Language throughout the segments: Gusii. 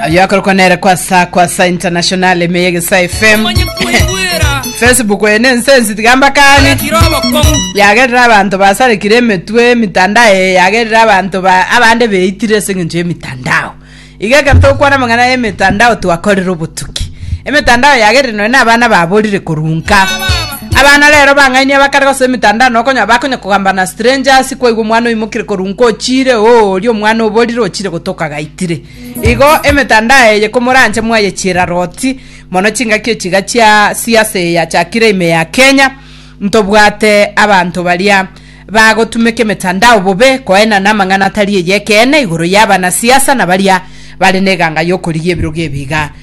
yakorokwa nere kwa sa kwa sa international emeye gesa fm Onye kwigwira facebook ene ensensi tigamba kani kirobo komu yagerera abanto basarekire emetwe emitandao eye yagerera abanto ba abande beitire ase eng'encho y'emitandao iga ekero tokwana amang'ana y'emitandao twakorire obotuki emitandao yagerire nonya na abana baborire korunka Abana rero bang'ainie bakarega ase emetandao na okonyora bakonya kogamba na strangers kwaigwa omwana oimokire korwa inko ochiire oo oria omwana oborire ochiire gotoka gaitire igo emetandao eye komoranche mwayechiera roti mono chingaki echi iga chia siasa eye yachakire ime ya Kenya ntobwate abanto baria bagotumeka emetandao bobe koenana amang'ana atari eyekeene igoro y'abana siasa na baria bare na eganga y'okorigia ebirogo ebi iga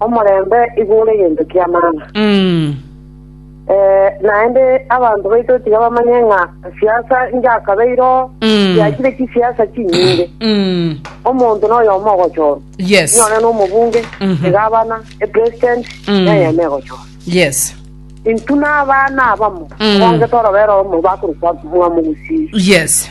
Omorembe igo ore egento ki'amang'a. Eh, naende abanto baito tiga bamanye ng'a siasa inchakabeire oo, chiachire chisiasa chinyinge. Omonto noyomo ogochorwa. Yes. Inyore na omobunge, egavana, epresident, neyemo egochorwa. Yes. Intwe na abana abamo, obangete orobere omo bakorokwa Mwamogusii. Yes.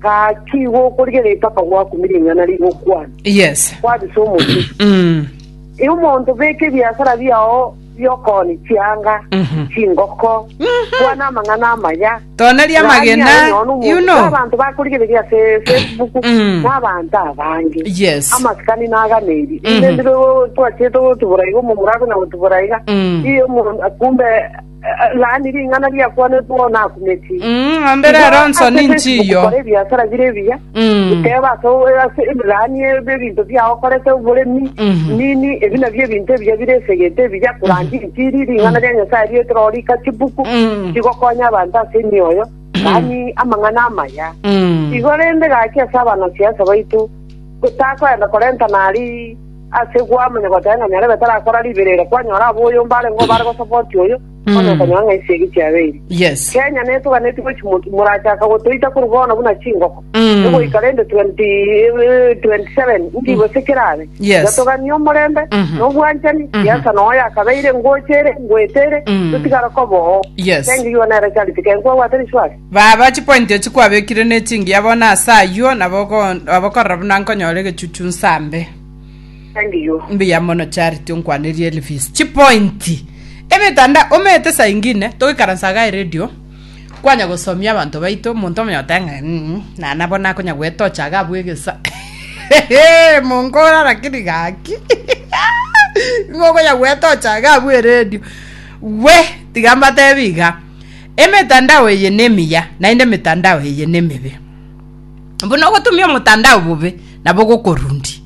Gaki igo okorigia ritaka gwakumirie ing'ana rigokwana, Yes. kwabisa omochie. Mm. E omonto beka ebiasara biao bi'okooni chianga, Mhm. chingoko, kwana amang'ana amaya, Toneria Gania amagena, aye nonya omonto, you know. n'abanto bakorigereria ase Facebook, Mm. n'abanto abange. Yes. amasikani naganeiri Mhm. inde ndire twachete gotubura iga omomura akona gotubura iga Mm. iyo omonto kumbe Laani ring'ana riakwanetwe oo nakumeti. Mm, ng'ombe Igo rero nso ase ninchi Facebook iyo. kora ebiasara bire ebiya Mm. guteba ase o- ase laani ebe ebinto biao okorete oboremi Mhm. nini ebi nabio ebinto ebiya bire esegete ebiya kurandia injiri ring'ana ria nyasae riete roo rika chibuku Mm. chigokonya abanto ase emioyo laani amang'ana amaya Mm. igo rende gaki ase abanasiasa baito gotakoenda korenta nari Ase gwamanya goteba ng'a nyarebe tarakora riberera, kwanyora aboyomba arengeo bare gosapoti oyo, bono okonyora ng'a esegi chiabeire. Yes. Kenya netoganeti gochi moki morachaka gotoita korwa bono buna chingoko Mm. egoika rende 20, eh, 27 nki gose kerabe Yes. gatoganie omorembe Mhm. nobwanchani Mhm. siasa noyo yakabeire ngocha ere ngoeta ere Mm. totigare koba oo Yes. Thank you, you are nere charity kenkwagwate rishwari Baba, chipointi echio kwabekire ne chingiya bono ase ayio, nabo okorora buna nkonyora egechuchu nsambe. Mbuya mono Charity onkwanerie Elvis chipointi. Emetanda omete saa ingine togoikaransa iga eredio kwanya gosomia abanto baito omonto omonye ogoteba ng'a mm nana bono akonya gwetocha iga abue egesa monkore lakini gaki nigo okonya gwetocha iga abue eredio we tiga mbatebi iga. Emetandao eye nemiya, naende emetandao eye nemebe. Buna ogotumia omotandao bobe, nabo gokorundi.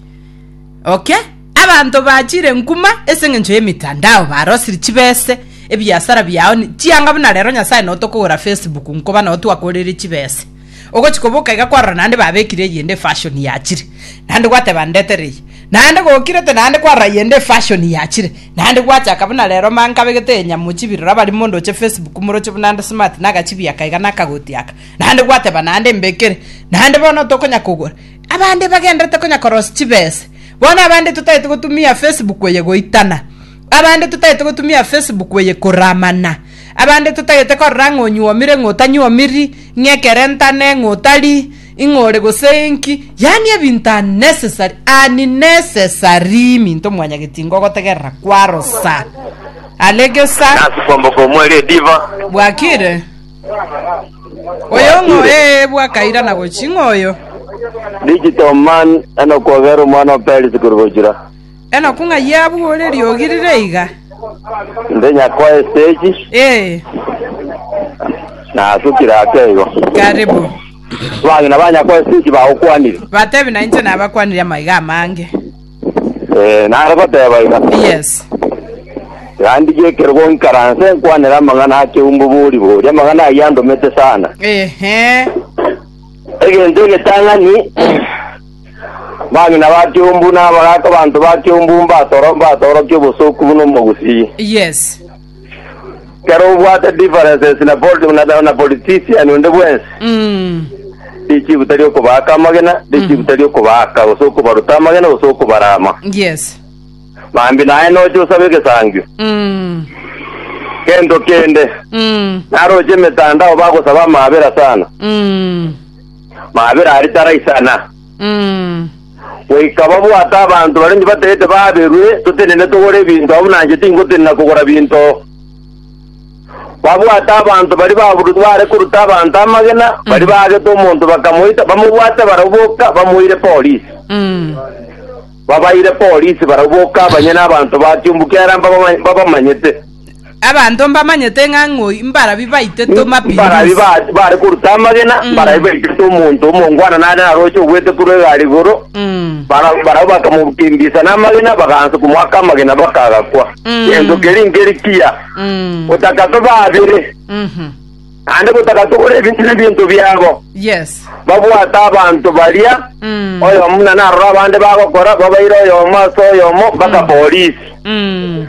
Okay? Abanto bachire nkuma ase eng'encho y'emetandao, barosire chibese, ebiasara biao, chianga buna rero Nyasae nao tokogora Facebook nkoba nao twakorire chibese. Ogochia koboka iga kwarora naende babekire eyende efashoni yachire, naende gwateba, Ndetere eye. Naende gokirete naende kwarora eyende efashoni yachire, naende gwachaka buna rero ma nkabegete eye nyamo chibi rora bari mondo oche Facebook moroche buna nde smart na agachibi aka iga na akagoti aka. Naende gwateba naende mbekere. Naende bono tokonya kogora. Abande bagenderete konya korosia chibese. Bono abande totaete gotumia Facebook eye goitana. Abande totagete gotumia Facebook eye korora amana. Abande totagete korora ng'a onyuomire, ng'a otanyuomiri, ng'a ekere ntane, ng'a otari, ng'a ore gose inki. Yaani ebinto unnecessary, unnecessary minto mwanyageti ingo ogotegerera kwarosa. Alegesa. Nasi kwamboka omweri ediva. Bwakire. Oyo ng'o? Bwakire. Ee, bwakaira na gochi. Ng'oyo. Digital man, enokwogera omwana o Perisi korwa gochura. Enoku ng'ai abwo ore riogi rire iga? Inde nyakwa estage. Ee. Nasukire ake igo. Karibu. Abang'ina ba nyakwa estage bagokwanire. Batebi na inche nabakwanire amaiga amange. Eh, nare goteba iga. Yes. Yandigie ekerogo nkaranse nkwanera amang'ana ake umbo bori bori. Amang'ana ayio andomete sana. Ehe. Egento egetang'ani Abang'ina ba kiombu na abagaaka banto ba kiombu mbatoro mbatorokie obosooku buna omogusii. Yes. Kero obwate differences na poli- na- na- na politician onde bwensi Mm. richibu tari okobaaka amagena richibu tari okobaaka gose okobaruta amagena gose okobarama Yes. mambi naye noche osabe egesangio Mm. gento kende Mm. naroche emetandao bagosaba amaabera sana Mm. maabera aria taraisana, Mm. goika babwate abanto baria inche batagete baaberwe totenene togore ebinto abwo buna inche tingotenena kogora binto. Babwate abanto baria baburutwe baare koruta abanto amagena, baria baagete omonto bakamoita, bamobwate barabwo boka, bamoire polisi. Mm. Babaire polisi barabwo boka abanyene abanto ba kiumbu kiarenge mbabamanyete. Abanto mbamanyete ng'a ng'oi mbarabwo baitete Mapinduzi. Mbarabwo bare koruta amagena, mbarabwo baitete omonto omongwana nare naroche ogwete korwa egari igoro. Barabwo bakamokimbisa namagena, bagaansa komoaka amagena bakagakwa. Gento keria nkeri kiya, gotaka tobe abere. naende gotagatogora ebinto nebiento biabo. Yes. Babwate abanto baria, Mm. oyomo buna narora abande bagokora, babaire oyomo ase oyomo mpaka polisi. Mm.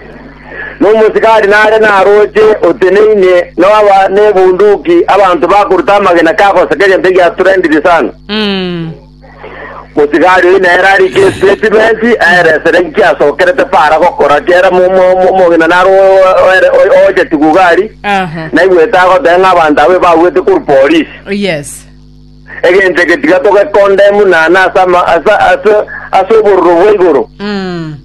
Nomosikari nare naroche oteneine noaba nebunduki, abanto bakoruta amagena kagoseka egento egiaturendiri sana. Mm. Omosigari oyio nere are Kristo e chibesi, aeresere inki asokerete para gokora. Kera mo- mo- mo- omogina naro o- o- ere- o- oche chigugari, Aha. naigwete agoteba ng'a abanto abwo ebagwete korwa polisi. Yes. Egento eke tiga togekondemu nana ase ama- ase- ase- ase obororo bwa igoro. Mm.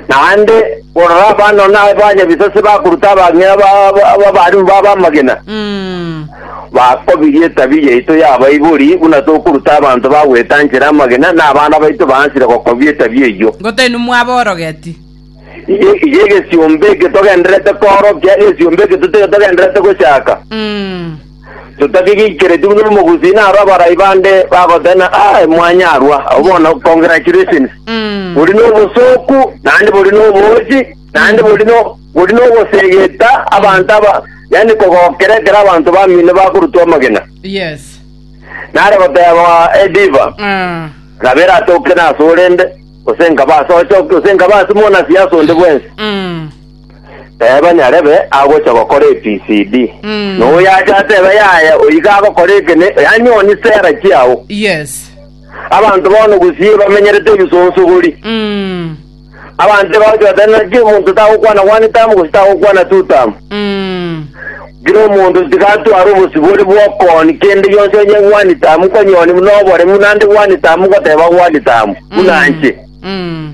Naende bororo abana na abanyabisase bakoruta abang'ina ba- ba- b'abarimu babo amagena, Mm. bakobiria etabia yaito y'abaibori, buna tokoruta abanto bagwetanchere amagena, na abana baito baansire gokobia etabia eyio. Ngotainwe mwaborogeti. Iye iye egesiombe eke togendererete koorokia, egesiombe eke tote- togendererete gochaka. Mm. Totakegeikeretie buna omogusii naro abarai bande bagoteba ng'a, Aye mwanyarwa, abo bono congratulations. Mm. Bori n'obosooku, naende bori n'oboochi, naende bori no bori n'ogosegeta abanto aba, yaani kogokera ekero abanto bamino bakorutwa amagena. Yes. Nare goteba Ediva, Ah. nabera atoke nase orende, gose nkaba ase ochoki, gose nkaba ase monasiasa onde bwensi. Mm. Teeba nyarebe agocha gokora EPCD. Mm. Na oyacha atebe yaya oiga agokora ekene yanyonie sera chiao. Yes. Abanto bono gusie bamenyerete ebisonsogori. Mm. Abanto bagocha batari naki omonto tagokwana one time gusi tagokwana two time. Mm. Kira omonto tigatwara obosibori bwokoni kende gionsi onye one time konyoni buna oboremu nande one time goteba one time buna nche. Mm.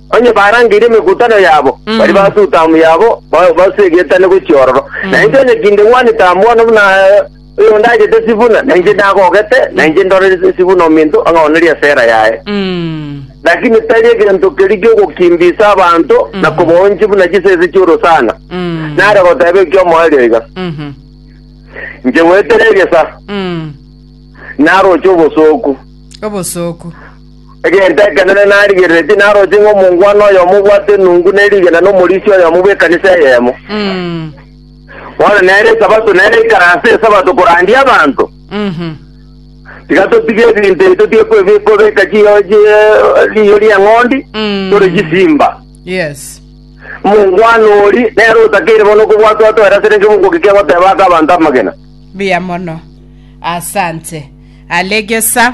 Onye barangeirie emegutano yabo, baria basuta amo yabo ba- basue egetane gochia ororo. Na inche onye tindegwanete amo bono buna oyo ndachete Sifuna, na inche ndagogete, na inche ndorire Sifuna ominto ang'aonerie esera yaye. Mm. Lakini tari egento keria gi'ogokimbisa abanto na kobaonchia buna chisese chi'orosana. Mm. Nare goteba eki'omoerio iga, Mhm. inche goetera egesa, Mm. naroche obosooku. Obosooku. Egento ekenene narigereretie naroche ng'a omongwana oyomo obwate enungu ne rigena na omorisia oyomo bw'ekanisa eyemo. Mm. Bono nere Esabato nere aikare ase Esabato korandia abanto. Mhm. Tiga totige ebinto ebi totige kwe- kobeka chiyo chie- riiyo ri'eng'ondi Mm. tore chisimba. Yes. Omongwana ori nere otakeire bono okobwatwa atoera ase renge mogoki kegoteba ake abanto amagena. Buya mono. Asante. Alegesa.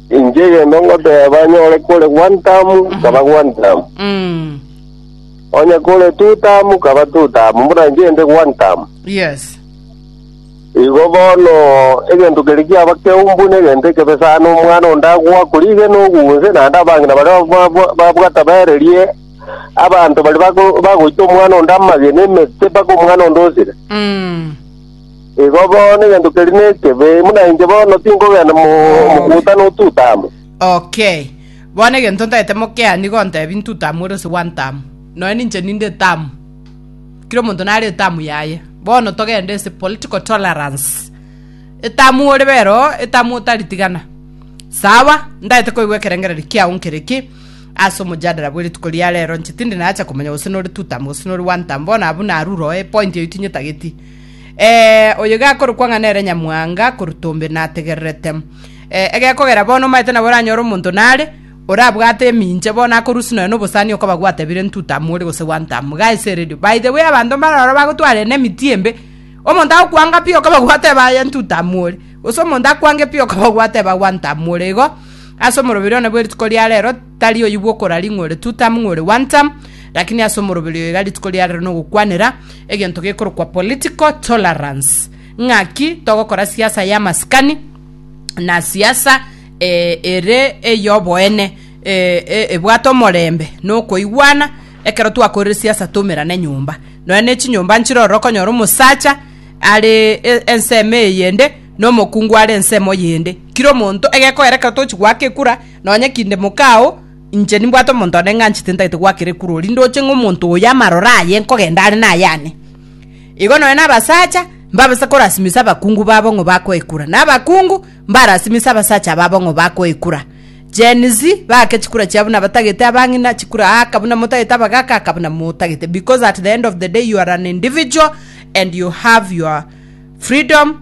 Inche egento ngoteba banyore kore one term kaba one term. Mm. Onye kore two term kaba two term. Buna inche inde one term. Yes. Igo bono egento keri kiaba keumbu na egento ekebe sana omwana onde agoa korige na ogunse naende abang'ina baria ba- ba- babwata baererie abanto bari bako- bagoita omwana onde amagena emete mpaka omwana onde osire. Mm. Igo bono egento keria nekebe, buna inche bono tinkogenda mokuuta n'Otutamu. Okay. Bono egento ntagete mokeaa nigo ntebi Ntutamu ore ose bw'Antamu. Nonya ninche ninde Etamu. Kera omonto nare Etamu yaye. Bono togende ase political tolerance. Etamu ore bero, Etamu otaritigana. Sawa, ntagete koigwa ekerengererio kiao nkere ki ase omojadala bw'erituko ria rero. Inche tindi nacha komanya gose nore Tutamu gose nore bw'Antamu. Bono abwo narure oo epoint eyio tinyetageti. Ee, oyo gakorokwa ng'a nere nyamwanga koruta ombe nategererete. Ee, egekogera bono omaete nabo oranyore omonto nare, orabwate eminche bono akorusia nonya nobosani okoba gwatebire ntutam ore gose wantam. Guys eredio. By the way abanto mbare ororo bagotware na emiti embe, omonto agokwanga pi okaba gwateba aye ntutam ore, gose omonto akwange pi okaba gwateba wantam ore igo, ase omoroberi one bwe rituko ria rero, Tari oyio bw'okorari ng'a ore two term ng'a ore one term, lakini ase omoroberi oyo iga rituko riarero nogokwanera egento gekorokwa political tolerance. Ng'aki togokora siasa y'amasikani na siasa ere ey'oboene ebwate omorembe na okoigwana. Ekero twakorire siasa twaumerane nyomba, nonya ne chinyomba nchire ororo okonyora omosacha are ensemo eyende na omokungu are ensemo yende. Kira omonto egekogera ekero tochi goaka ekura. Nonya kinde mokao, inche nimbwate omonto onde ng'anchete ntagete gwakera ekuru, rinde oche ng'a omonto oyo amaroro aye nkogenda are nayane. Igo nonya nabasacha mbabase korasimisa abakungu babo ng'o bakoekura, na abakungu mbarasimise abasacha babo ng'o bakoekura. Gen Z Baake chikura chiabo buna abatagete abang'ina, chikura aaka buna motagete abagaaka aaka buna motagete, because at the end of the day you are an individual and you have your freedom,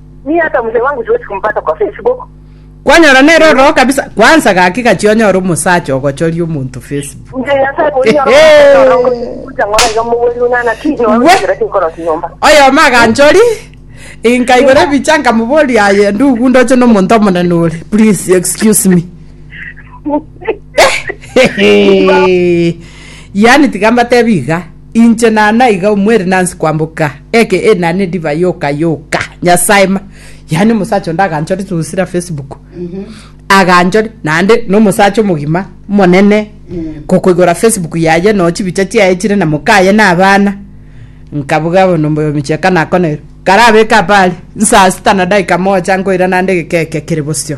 Kwanyora nere ororo kabisa. Kwanza gaki gachia onyore omosacha ogochoria omonto Facebook. Oyomo aganchori nkaigora ebicha nkamoboria aye ndugu ndoche na omonto omonene ore please excuse me yani tiga mbatebi iga Inche nana iga omweri nansi kwamboka eke e nane ndiba yoka yoka nyasaye ma yani omosacha onde aganchore tugusira facebook aganchore nande no omosacha omogima monene kokoigora facebook yaye no chibicha chiaye chire na mokaye na abana nkabuga bono mboyo micheka nakonere karabeka pari nsaa sita na daika moja nkoira nande egekeke kere bosio